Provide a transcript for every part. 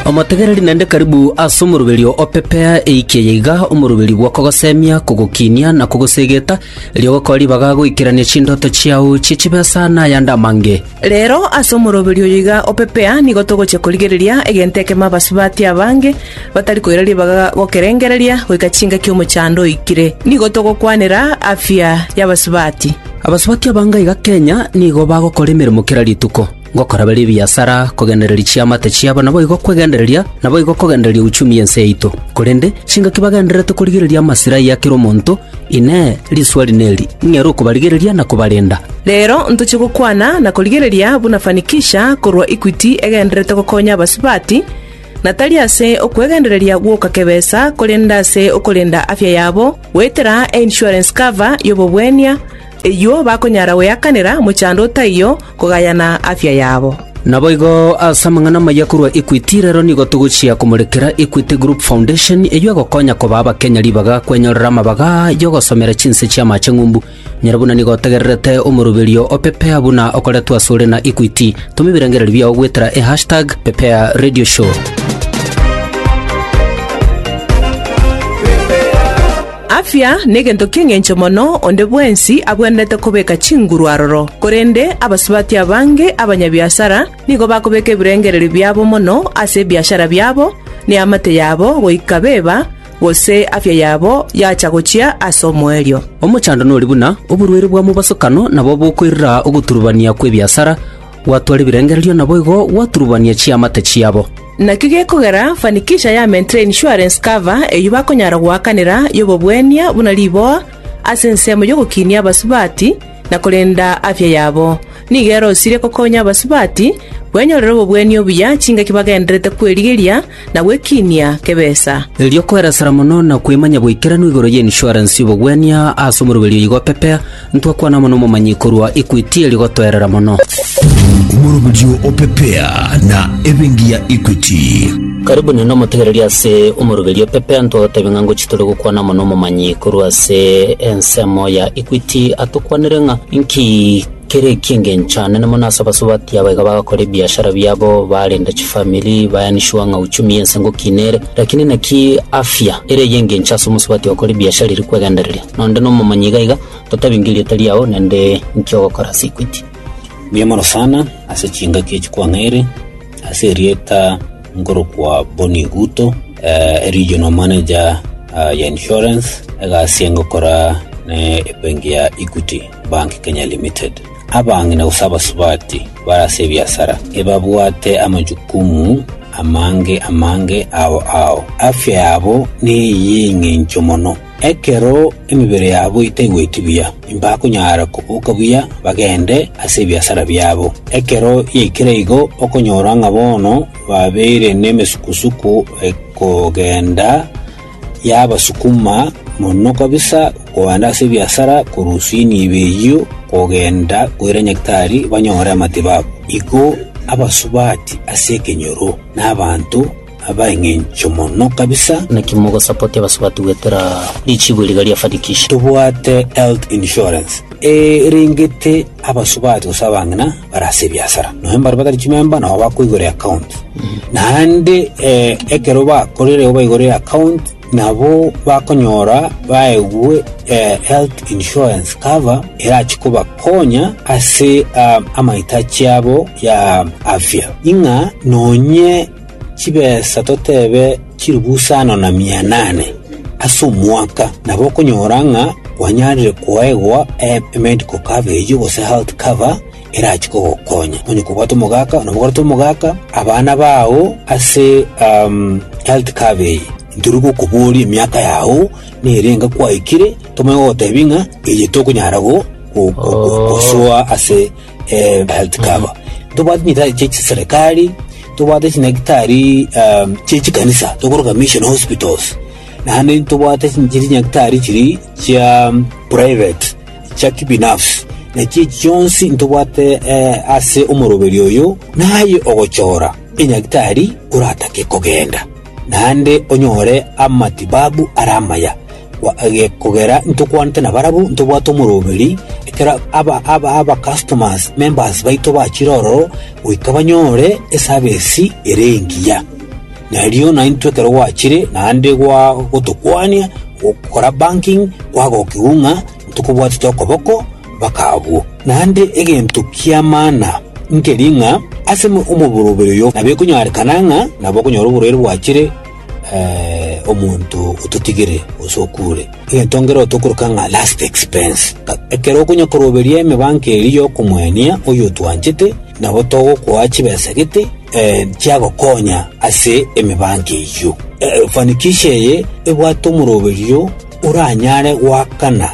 Omotegereri naende karibu ase omoroberio o pepea eikia eye iga, omoroberio bw'okogosemia, kogokiinia, na kogosegeta, erio ogokora ribaga goikerania chindoto chiao chie chibesa na ayande amange. Reero ase omoroberio oyo iga o pepea nigo togochia korigereria egento ekemo abasubati abange batari koira ribaga gokerengereria goika chingaki omochando oikire. Nigo togokwanera afya y'abasubati. Abasubati abange iga Kenya nigo bagokora emeremo kera rituko. Ngokoraberia ebiasara, kogendereria chiamate chiabo, naboigo kwegendereria, naboigo kogendereria uchumi y'ense yaito. Korende chingaki bagendererete korigereria amasirai a kera omonto, Inee! Risuari neri, ng'ere okobarigereria na kobarenda? Rero ntoche gokwana na korigereria buna Fanikisha korwa Equity egendererete gokonya abasubati, na tari ase okwegendereria gwoka kebesa, korende ase okorenda afya yabo goetera e-insurance cover y'obobwenia, Eyuo bakonyara goyakanera mochando o taiyo kogayana afya yabo. Naboigo ase amang'ana amaya korwa Equity, rero nigo togochia komorekera Equity Group Foundation, eyio egokonya koba abakenya ribaga kwenyorera amabaga y'ogosomera chinse chi'amaache ng'umbu. Nyora buna nigo otegererete omoroberio o Pepea buna okoretwe asore na Equity, toma ebirengererio biao goetera e hashtag Pepea Radio Show. Afya negento ki'engencho mono, onde bwensi agwenerete kobeka chinguru aroro. Korende abasubati abange abanyabiasara nigo bakobeka ebirengererio biabo mono ase ebiashara biabo, ne amate yabo goika beba, gose afya yabo yacha gochia ase omoerio. Omochando nori buna oborwaire bwa mobasokano, nabo bokoirira ogoturubania kw'ebiasara, gwatwara ebirengererio naboigo gwaturubania chiamate chiabo. Naki gekogera fanikisha ya Mentre Insurance Cover eyio bakonyara goakanera y'obobwania buna riboa ase ensemo y'ogokinia abasubati na korenda afya yabo. Nigo erosirie kokonya abasubati bwenyorere obobwenia obuya chingaki bagendererete kwerigeria na gwekinia kebesa. Erio kweresera mono na kwemanya goikeranu igoro y'insurance y'obobwania ase omoroberio oyiga opepea, Ntwakwana mono omomanyi korwa Equity eri gotoerera mono. Omoroberio o Pepea na Ebenki ya Equity. Karibu nende omotegereri ase omoroberio Pepea ntwagotebia ng'a ngochi tore gokwana mono omomanyi korwa ase ensemo ya Equity atokwanere ng'a inki kere eki'engencho anene mono ase abasubati aba iga bagakora ebiashara biabo barenda chifamiri baeni sure ng'a uchumi y'ense ngokina ere. Lakini naki afya ere ey'engencho ase omosubati okora ebiashara eri kwegendereria? Nonde nomomanyi iga iga, totabinge erieta riao, naende inki ogokora ase equity. Mbuya mono sana ase chingaki echi kwang'eire ase erieta nkorokwa Bonny Guto, eh, regional manager ah, ya insurance egasi engokora ne ebenki ya Equity Bank Kenya Limited. Abang'ina gose abasubati bare ase ebiasara ebabwate amajukumu amange amange ao ao. Afya yabo neye y'eng'encho mono. Ekero emebere yabo etaigweti buya, mbakonyara koboka buya bagende ase ebiasara biabo. Ekero yaikire igo, okonyora ng'a bono babeire nemesuku-suku ekogenda, yabasukuma mono kabisa kogenda ase ebiasara korusia enibo eyio kogenda koira Nyagetari banyore amatibabu. Igo abasubati ase ekenyoro, na abanto, abaengencho mono kabisa. Naki mogosapotia abasubati goetera richibu riga ria Fanikisha? Tobwate health insurance erengete abasubati gose abang'ina bare ase ebiasara, nonya mbare batari chimemba nabo bakoigora eaccount. Naende eh, ekero bakorire baigore eaccount nabo bakonyora baegwe eh, health insurance cover erachi kobakonya ase ah, amahitachi abo ya afya. Ing'a nonye chibesa toteebe chiribusaano na mia inane ase omwaka, nabo okonyora ng'a kwanyarire koegwa emedical coverage gose health cover erachie kogokonya, onye kobwate omogaka nabo ogorete omogaka, abana bao ase health cover eye. Ntoria gokoboria emiaka yao nere enga kwaikire, tomanye gogoteebia ng'a eye tokonyara gosoa ase. eh, health cover tobwate nyitari chie chiserekari tobwate chinyaktari um, chie chikanisa tokoroka mission hospitals naende tobwate chiri nyaktari chiri chia um, private chia kibinafsi nachi echi chionsi ntobwate eh, ase omoroberi oyo naye ogochora enyaktari oratake kogenda naende onyore amatibabu ara amaya Kogera ntokwanete nabarabwo, ntobwate omoroberi, ekero abacustomers, members, baito bachire ororo, goika banyore esabesi ere engiya. Na erio naintwe ekero gwachire, naende gwagotokwania gokora banking, kwagokigwa ng'a ntokobwatete okoboko mpaka abwo. Naende egento ki'amana nkeria ng'a ase omoboroberi oyo nabwo ekonyorekana ng'a nabwo okonyora oborwaire bwachire, omonto ototigire gose okuure, egento nkere otokoroka ng'a last expense. Ekero okonya koroberia emebango eria y'okomwania oyo otwanchete, nabo togokoa chibesa gete eh, chiagokonya ase emebango eyio. Eh, Fanikisha eye ebwate omoroberio oranyare goakana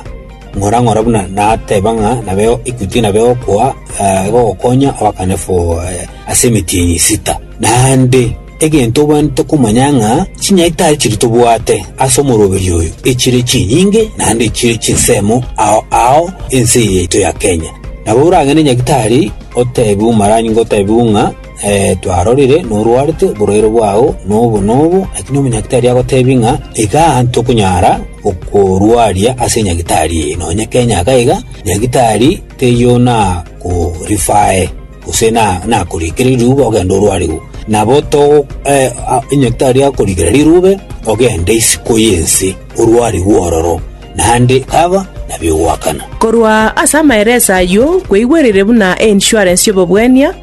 ng'ora ng'ora buna nateba ng'a nabeo Equity nabeo okoa eh, egogokonya oakane for eh, ase emetienyi sita. Naende Egento obwenerete komanya ng'a chinyaito aye chiria tobwate ase omoroberio oyo echire chinyinge naende echire chinsemo ao ao ense eye yaito ya Kenya. Nabo oragende nyagitari oteebie omorangi ngotebigwe ng'a ee twarorire norwarete oborwaire bwao nobo nobo, lakini omonyagitari agoteebie ng'a iga ntokonyara gokorwaria ase nyagitari eye, nonya Kenya iga iga nyagitari teiyo nakorifaae. gose nakorikere riruube ogende orwarigwe. Nabo onye tari akorikera riruube, ogende isiko y'ense orwarigwe ororo, naende kaba nabio ogoakana. Korwa ase amaereso ayio kweigwerire buna e insurance y'obobwania,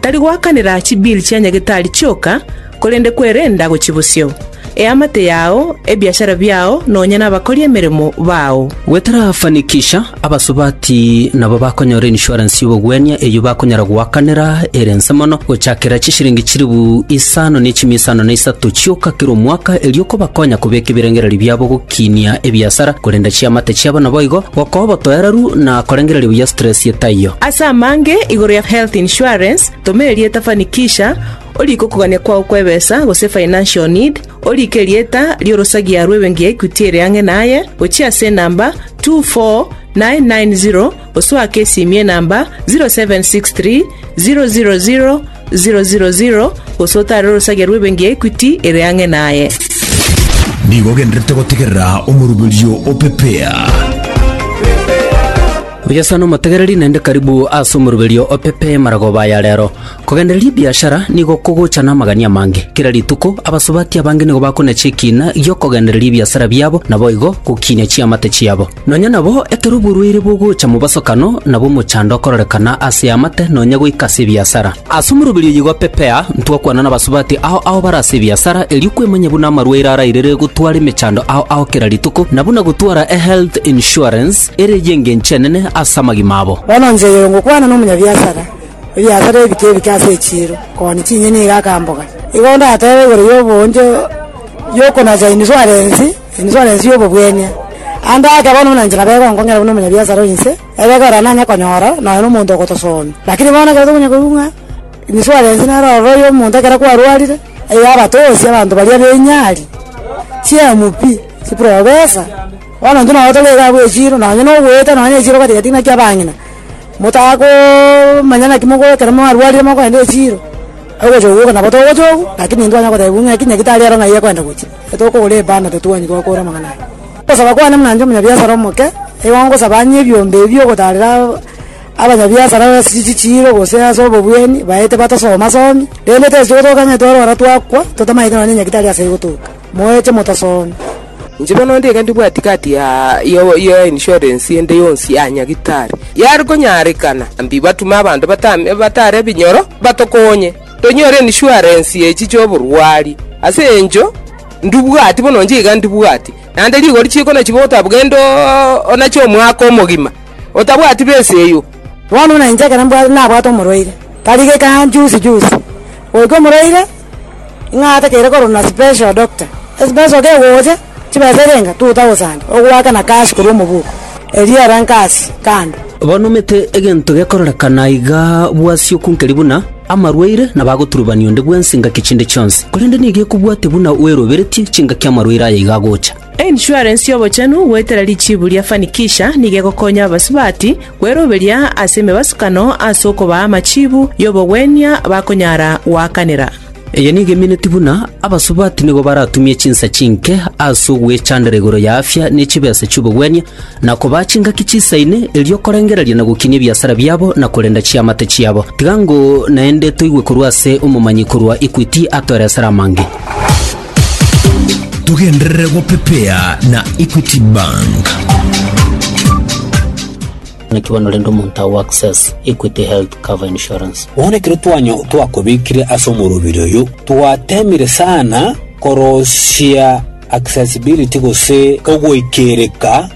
tari goakanera chibill chia nyagetari chioka, korende kwerenda gochia bosio. Eamate yao, ebiachara biao, nonya nabakori emeremo bao. Gotarafanikisha, abasubati nabo bakonyora insurance y'obogwenia eyio bakonyara goakanera ere nse mono gochakera chishilingi chilifu isano ne chimia isano na isato chioka kera omwaka erio kobakonya kobeka ebirengererio biabo gokiinia ebiasara korenda chiamate chiabo naboigo gokoa obotoereru na korengereria buya stress etaiyo. Ase amange igoro ya health insurance, toma erieta fanikisha, Oriike okogania kwao kw'ebesa, gose financial need, oriike erieta ri'orosagia rw'ebenki ya Equity ere ang'e naye, gochia ase enamba 24990 gose oake esimie enamba 0763 000 000 gose otare orosagia rw'ebenki ya Equity ere ang'e naye. Nigo ogendererete gotegerera omoruberio o Pepea. Oria sana omotegereri naende karibu ase omoruberio o Pepea maragoba aya rero. Kogendereria ebiashara nigo kogocha namagani amange. Kera rituko abasubati abange nigo bakonia chikiina gi'okogendereria ebiasara biabo, naboigo gokiinia chiamate chiabo. Nonya nabo ekero borwaire bogocha mobosokano, nabo omochando okororekana ase amate nonya goika ase ebiasara. Ase omoroberio oyoigo Pepea, ntwakwana nabasubati ao ao bare ase ebiasara, erio kwemanya buna amarwaire arairere gotwara emechando ao ao kera rituko, na buna gotwara ehealth insurance ere y'engencho enene ase amagima abo. Bono inche oyoyo ngokwana nomonyabiasara, Ebiasare ebike ebike ase echiiro, kooni chinyeni iga akamboga. Igo ndatebe igoro y'oboonjo y'okonacha insurance, insurance y'obobwenia. Ande ake bono buna inche nabego nkong'ira buna omonyabiasara o inse, ebego ere nanye konyora nonya na omonto ogotosoomia. Lakini bono ekero tokonya korwa ng'a insurance nere ororo oyo omonto ekero kwarwarire, eira abatosie abanto baria b'enyari, chiemu pi, chiprofesa, bono intwe nabo tore iga abwo echiiro, nonya nogoeta nonya echiiro gati gati ng'aki abang'ina. Motagomanya naki mogokora ekero mwarwarire mokoenda echiiro, ogocha ogoka nabo togocha ogu, lakini intwe twanya kotebiwa ng'aki naki tari ero ng'ai ekwenda gochia. Etogokogora ebanda totuanyi gokora amang'ana aya. Ogosaba kwane buna inche omonyabiasara omoke, nigo ngosaba anye ebiombe ebi ogotarera abanyabiasara ase chichiiro gose ase obobwani baete batasoma somi, rende tesi togotoka ng'a etwarwara twakwa, totamaete nonye nyaki tari ase igo toka. Moeche motasoonya. Inche bono nigo ndibwati kaati ya ya insurance ende yonsi ya nyagitari yare konyarekana, mbiba tume abanto batare ebinyoro batokonye tonyore insurance echi chi'oborwari. Ase encho ndubwati bono inche iga ndibwati naende rigori chiko nachibe otabugende onache omwaka omogima otabwati besa eyio. Bono buna inche ekero nabwate omorwaire, tari geka juzi juzi, goika omorwaire. Ng'a atakeire kororwa na special doctor. Esibesa oke gocha, chibesa eria enga 2000, ogoaka na cash korwa omobuko. Erio era nkasi kando. Bono omete egento gekororekana iga bw'asioku nkeri buna amarwaire na bagoturubania onde bwensi ngaki chinde chionsi, korende nigo ekobwate buna oeroberetie chingaki amarwaire aya iga agocha. Einsurance y'obochenu goetera richiibu ria Fanikisha nigo egokonya abasubati kweroberia ase emebasukano ase okobaa amachiibu y'obogwenia bakonyara goakanera. Eye nigo emineti buna abasubati nigo baratumie chinsa chinke ase ogwechandera igoro y'afya ne chibesa chi'obogwenia na kobaa chingaki chisaine, erio korengereria na gokinia ebiasara biabo na korenda chiamate chiabo. Tiga ng'o naende toigwe korwa ase omomanyi korwa Equity atoeresere amange. Togenderere gopepea na Equity Bank. Naki bono rende omonto ao access Equity Health Cover Insurance. Bono ekero twanya twakobekire ase omorobiri oyo, twateemire sana korosia accessibility gose ogoikereka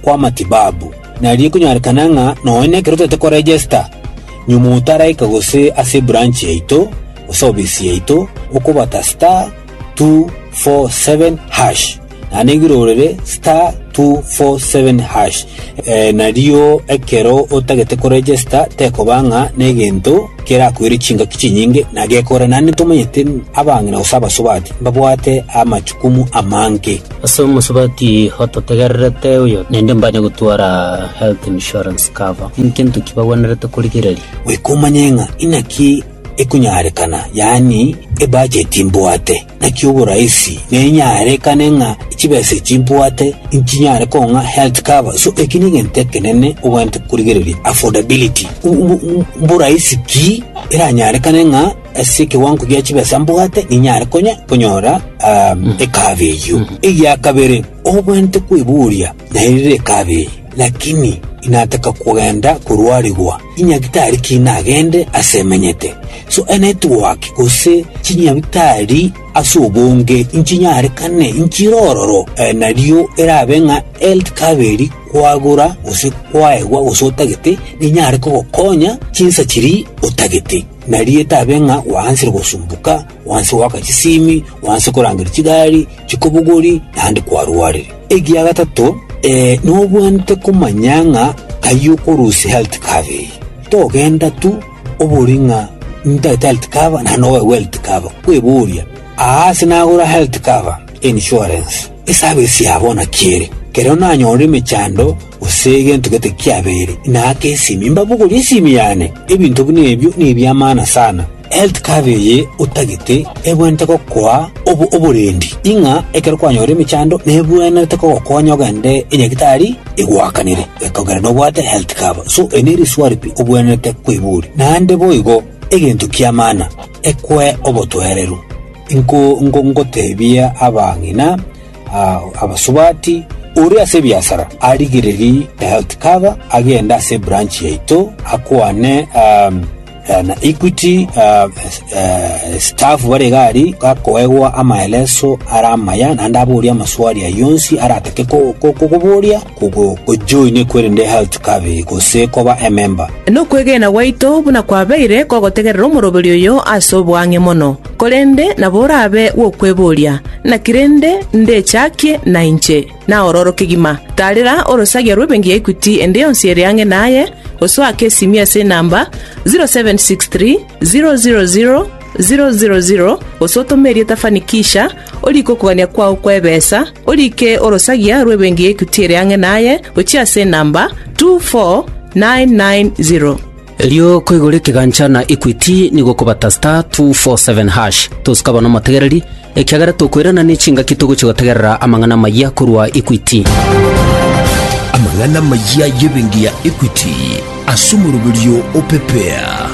kw'amatibabu. Nari ekonyorekana ng'a nonye nekero toete koregesta nyuma otaraika gose ase ebranch yaito gose obisi yaito okobata star 247 hash naende nigo irorere star 247 hash eh, nario ekero otagete koregesta tekoba ng'a negento kerakoire chingaki chinyinge na gekora, naende tomanyete abang'ina gose abasubati mbabwate amachukumu amange. Ase omosubati ototegererete oyo naende mbanye gotwara health insurance cover, nintgento ki bagwenerete korigereria? Goika omanye ng'a inaki ekonyarekana, yaani ebacheti mbwate. Naki oboraisi nenyarekane ng'a chibesa echi mbwate nchinyare kong'a health cover, so eki negento ekenene ogwenerete korigereria, affordability. M- m- m- Mboraisi ki eranyarekane ng'a ase ekewango gia chibesa mbwate ninyare konya konyora um, ekaba eyio. Egia kabere, ogwenerete kweboria naerire ekaba eye, lakini inataka kogenda korwarigwa Inyagitari ki nagende ase emenyete? So e network gose chinyagitari ase obonge inchinyarekane inchire ororo nario erabe ng'a health cover eri kwagora gose kwaegwa gose otagete ninyare kogokonya chinsa chiria otagete nario etabe ng'a gwaanchire gosumbuka. Gwansa goaka chisimi, gwansa korangeria chigari, chikobogori, naende kwarwarire. Egia gatato, ee, nobwenerete komanya ng'a taiyo okorusia health cover eye. Togenda tu obore ng'a ntagete health cover naende nobaegwa health cover, kweboria, Aa ase nagora health cover, insurance, eservice ya bono naki ere? Ekero nanyorire emechando gose egento gete kiabeire, naake esimi, mbabogorie esimi yane. Ebinto buna ebio nebi'amana sana. Eltikabi eye otagete ebwenerete gokoa obo oborendi, ing'a ekero kwanyora emechando nebwenerete kogokonya ogende enyagitari egoakanere, ekogera nobwate Eltikabi. So eri neriswari pi obwenerete koiboria. Naende boigo, egento ki'amana, ekwe obotwereru. Inko nko ngotebie abang'ina aa abasubati, ore ase ebiasara arigereri Eltikabi agende ase ebranchi yaito akwane aa na Equity staff bare iga aria gakoegwa amaeleso are amaya naende aborie amaswali ayio onsi aratake kokoboria ojoine kwerende health cover eye gose koba ememba. Nokwegena gwaito buna kwabeire kogotegerera omoroberi oyo ase oboang'e mono, korende nabo orabe gwokweboria, Naki rende ndechakie nainche? naororo kegima. Taarera orosagia rw'ebenki ya Equity ende yonsi ere ang'e naye, osoake esimio ase enamba 0763000000 gose otome erieta Fanikisha, oriike okogania kwao kw'ebeesa, oriike orosagia rw'ebenki ya Equity ere ang'e naye gochia ase enamba 24990. Erio koigora ekegancha na Equity nigo okobata *247#, tosukaba n'omotegereri, ekiagera tokoirana nechingaki togochia gotegerera amang'ana amayia korwa Equity. Amang'ana amayia y'ebenki ya Equity ase omoroberio o Pepea.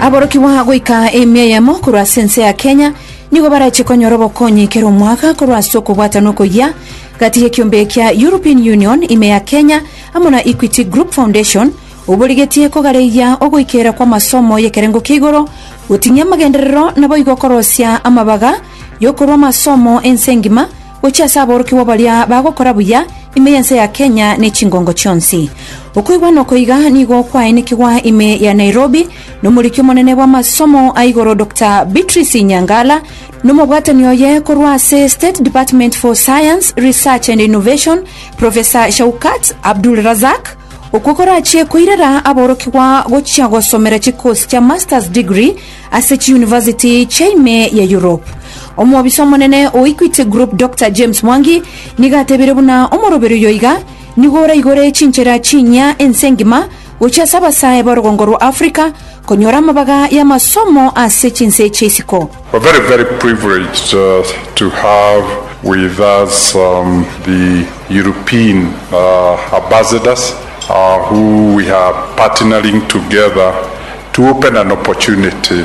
Aborokigwa goika emia eyemo korwa ase ense ya Kenya nigo barachie konyora obokonyi kera omwaka korwa ase okobwatana okoyia gati y'ekiombe kia European Union ime ya Kenya amo na Equity Group Foundation, oborigetie kogareyia ogoikeera kw'amasomo y'ekerengo kia igoro, goting'ia amagenderero, naboigo korosia amabaga y'okorua amasomo ense engima gochia ase aborokigwa baria bagokora buya ime y'ense ya Kenya ne chingongo chionsi. Okoigwa noko iga nigo kwaenekigwa ime ya Nairobi nomoriki omonene bw'amasomo a igoro Doctor Beatrice Inyangala nomobwatani oye korwa ase State Department for Science, Research and Innovation, Profesa Shaukat Abdulrazak, okwo korachie koirera aborokigwa gochia gosomera chikosi chia Masters Degree ase chiuniversity chia ime ya Europe. Omobisa omonene o Equity Group Dr James Mwangi nigo atebire buna omoroberio oyo iga nigo oraigore chinchera chinyia ense engima gochia ase abasae b'orogongo rwa Africa konyora amabaga y'amasomo ase chinse echi isiko. We're very, very privileged to have with us the European Ambassadors who we are partnering together to open an opportunity.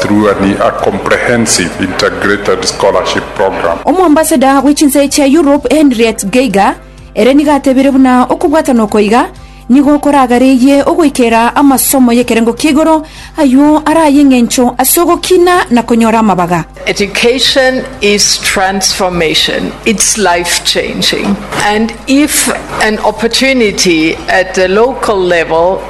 Through an a comprehensive integrated scholarship program. Omoambassador bwe chinse chia Europe Henriette Geiger ere nigo atebire buna okobwatana oko iga nigo koragareyie ogoikera amasomo y'ekerengo kia igoro aywo are ay'eng'encho ase ogokina na konyora amabaga. Education is transformation, it's life changing and if an opportunity at the local level,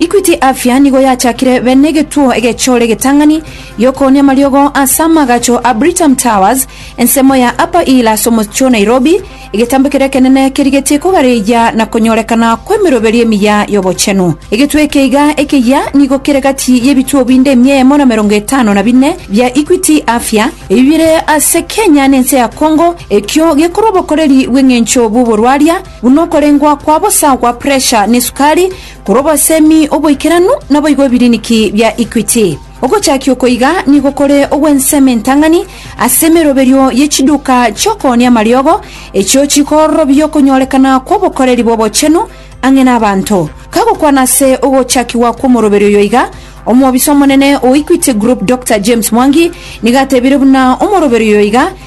Equity Afya nigo yachakire bene egetuo egechore egetang'ani gi'okoonia amariogo ase amagacho a Britam Towers, ensemo ya Upper Hill ase omochie o Nairobi, egetambe keria ekenene kerigetie kogareyia na konyorekana kw'emeroberi emiya y'obochenu. Egetuo eke iga ekeyia nigo kere gati y'ebituo binde emia eyemo na emerongo etano na bine bia Equity Afya ebi bire ase Kenya na ense ya Congo, ekio gekorwa obokoreri bw'eng'encho bw'oborwaria, buna okorengwa kwa bosa gwa puresha na esukari, korwa obosemi, oboikeranu, naboigo ebiriniki bia Equity. Ogochakia oko iga nigo kore ogw'ensemo entang'ani ase emeroberio ye chiduka chi'okoonia amariogo, echio chikororobia okonyorekana kw'obokoreri bw'obochenu ang'e n'abanto. Kagokwana ase ogochakigwa kw'omoroberio oyo iga, omobisa omonene o Equity Group Doctor James Mwangi nigo atebire buna omoroberio oyo iga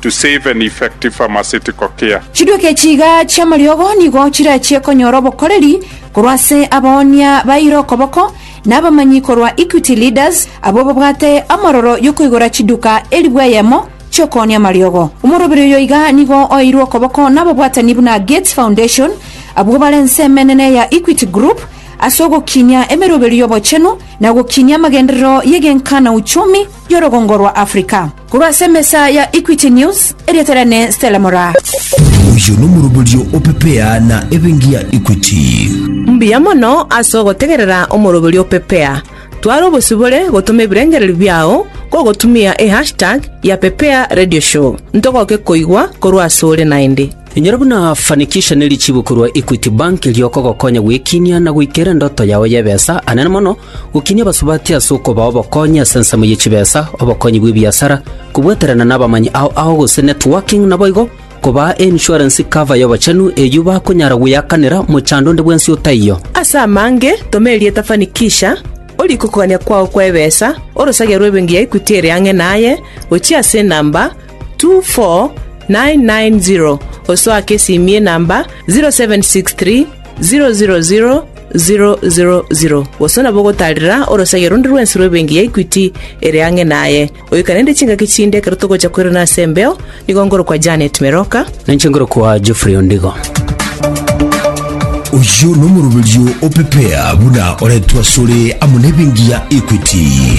to save an effective pharmaceutical care. Chiduki echi iga chi'amariogo nigo chirachie konyora obokoreri korwa ase abaoonia baire okoboko na abamanyi korwa Equity Leaders abwo babwate amororo y'okoigora chiduka elfu eyemo chi'okoonia amariogo. Omoroberi oyo iga nigo oeirwe okoboko nababwatani buna Gates Foundation abwo bare ense emenene ya Equity Group ase ogokinia emeroberio y'obochenu na ogokinia amagenderero y'egenka na uchumi y'orogongo rwa Africa. Korwa ase emesa ya Equity News, erieta riane Stella Mora. Oyo nomoroberio o Pepea na ebengi ya Equity. Mbuya mono ase ogotegerera omoroberio o Pepea. Twara obosibore gotoma ebirengererio biao gogotumia e hashtag ya Pepea Radio Show. Ntogoke koigwa korwa ase ore naende. Inyora buna Fanikisha ne richibu korwa Equity Bank riokogokonya gwekinia na goikera endoto yao y'ebesa anene mono, gokinia abasubati ase okobaa obokonyi ase ensemo ye chibesa, obokonyi bw'ebiasara, kobweterana nabamanyi ao ao gose networking naboigo kobaa ensurance cover y'obochenu eyio bakonyara gweakanera mochando onde bwensi otaiyo. Ase amange, toma erieta Fanikisha, orie kokogania kwao kw'ebesa, orosagia rw'ebenki ya Equity ere ang'e naye, gochia ase enamba, 24990 osoake esimie namba 0763 000 000 bosa nabo ogotarera orosagia rundi rwensi rw'ebenki ya Equity ere ang'e naye. Oika naende chingaki chinde ekero togocha koirana ase embeo, nigo nkorokwa Janet Meroka. Ninche nkorokwa Geoffrey Ondigo. Oyio nomoroberio opepea buna oretwe asore amo nebengi ya Equity.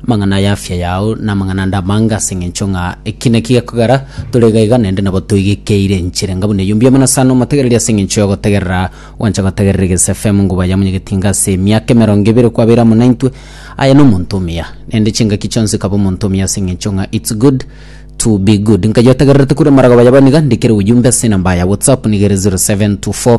Amang'ana y'afya yao namang'ana ande amanga, ase engencho ng'a eki naki gekogera tore iga iga naende nabo toigekeire enchera enga buna eyio. Mbiamana sana omotegereri ase engencho y'ogotegerera. Gwancha gotegerera Egesu FM nigo bwaya monyegeti inga ase emiaka emerongo ebere kwabeire amo naintwe. Aye nomonto omuya, naende chingaki chionsi kaba omonto omuya ase engencho ng'a it's good to be good. Nkayiotegererete kure amaragoba yabaniga, ndikere obojumbe ase enamba ya WhatsApp nigo ere 0724.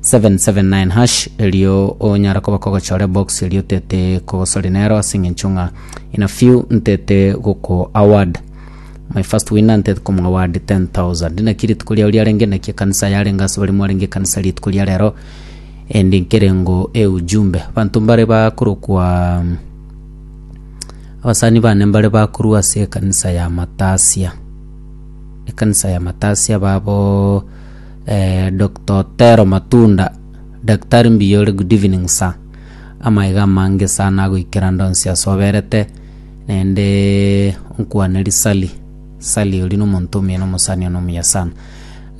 779#, erio onyare koba kogochora ebox erio tete kogosori nero ase eng'encho ng'a in a few ntete goko award my first winner ntete komo award 10000 naki rituko riao riarenge naki ekanisa yarenge ase baria mwarenge ekanisa rituko ria rero endi nkerengo eujumbe banto mbare bakorokwa abasani bane mbare bakorwa ase ekanisa ya matasia ekanisa ya matasia babo Eeh Doctor Otero Matunda, Daktari mbuya ore good evening sir, amaiga amange sana nagoikera ndonsi asoberete, naendeee nkwane risali, sali oria nomonto omino omosani one omuya sana.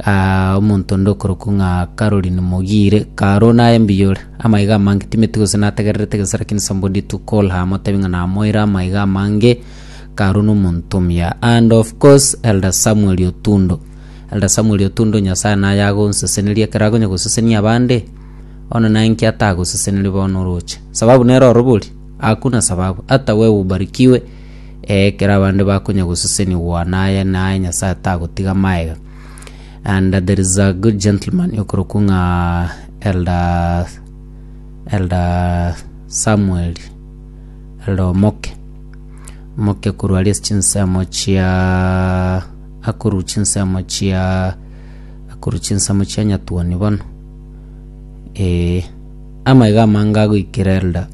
Aah omonto onde okorokwa ng'a Caroline Mogire, Caro naye mbuya ore, amaiga amange timeti gose nategererete gese lakini somebody to call her motebi ng'a namoire amaiga amange, Caro nomonto omuya. And of course Elder Samuel Otundo. Ere Samweli otundo Nyasae naye agonseseneria ekero akonya gosesenia abande, one naye inki atagoseseneri bono oroche. Sababu nere orobori, hakuna sababu, hata wewe ubarikiwe, ee, ekero abande bakonya gosesenia ogwana aye naye Nyasae tagotiga maega. And there is a good gentleman okorokwa ng'a Elder Elder Samuel Elder Omoke Omoke korwa aria ase chinsemo chia Akorue chinsemo chia akorue chinsemo chia nyatuoni bono. Ee. Amaiga amange agoikera Elda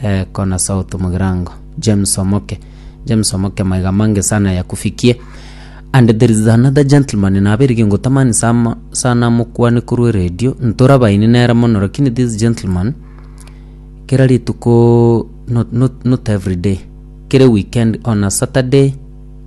eh, kona south mogirango. James Omoke. James Omoke maiga amange sana yakufikie. And there is another gentleman naberige ngotamani sama sana mokwane korwa eredio, ntorabaini nere mono lakini this gentleman kera rituko not not not everyday, kera weekend on a Saturday,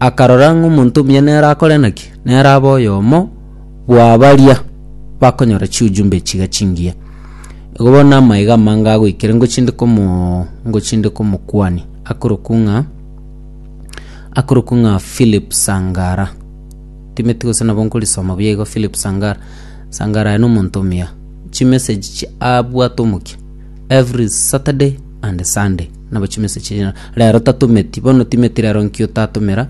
akarora ng'a omonto omuya nere akore naki? Nere abe oyomo bwa baria bakonyora chiujumbe echi iga chingiya. Igo bono namae iga amange agoikera ingo chinde komo ingo chinde komokwania, akorokwa ng'a akorokwa ng'a Philip Sangara. Ntimeti gose nabo nkorisoma buya igo Philip Sangara. Sangara aye na omonto omuya, chimessage chie abwate omokia every Saturday. Ande Sunday, nabo chimesa chiri na- rero tatometi, bono timeti rero nki otatomera,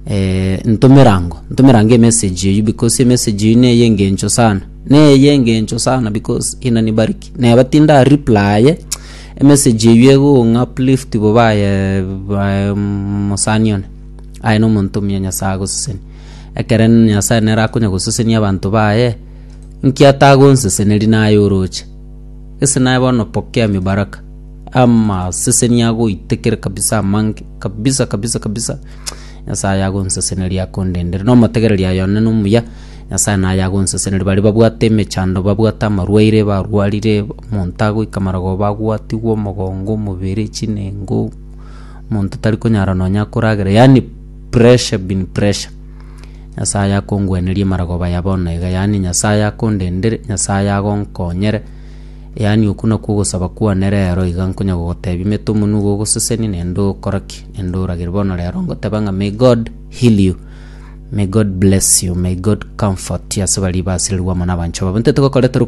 eh, ntomera ango, ntomera ango emessage eyio because emessage eyio neye engencho sana, neye engencho sana because inanibariki. Neba tindareplaye, emessage eyio egong'a uplift bo baye baye mosani one, aye na omonto omuya Nyasaye agoseseni. Ekere Nyasaye nere akonya gosesenia abanto baye, nki atagonseseneri naye oroche? Gese naye bono pokea mibaraka. Amaseseni agoitekere kabisa amange kabisa kabisa kabisa. Nyasaye agonseseneria akondendere. No motegereri ayo one no muya. Nyasaye naye agonseseneria bari babwate emechando babwate amarwaire barwarire omonto agoika marogo bagwatigwe omogongo omobere chinengo omonto tari konyara nonya koragera yaani pressure bin pressure. Nyasae akongwenerie marogoba ya bono iga, yaani Nyasae akondendere, Nyasae agonkonyere, yaani okwo nakwo ogosaba kwane rero iga, nkonya gogotebia mete omonwa iga ogosesenie naende okore ki? Naende oragere. Bono rero ngoteba ng'a may God heal you, may God bless you, may God comfort you ase baria basirirwe amo nabanchwa babo. Intwe tigokoreterwa.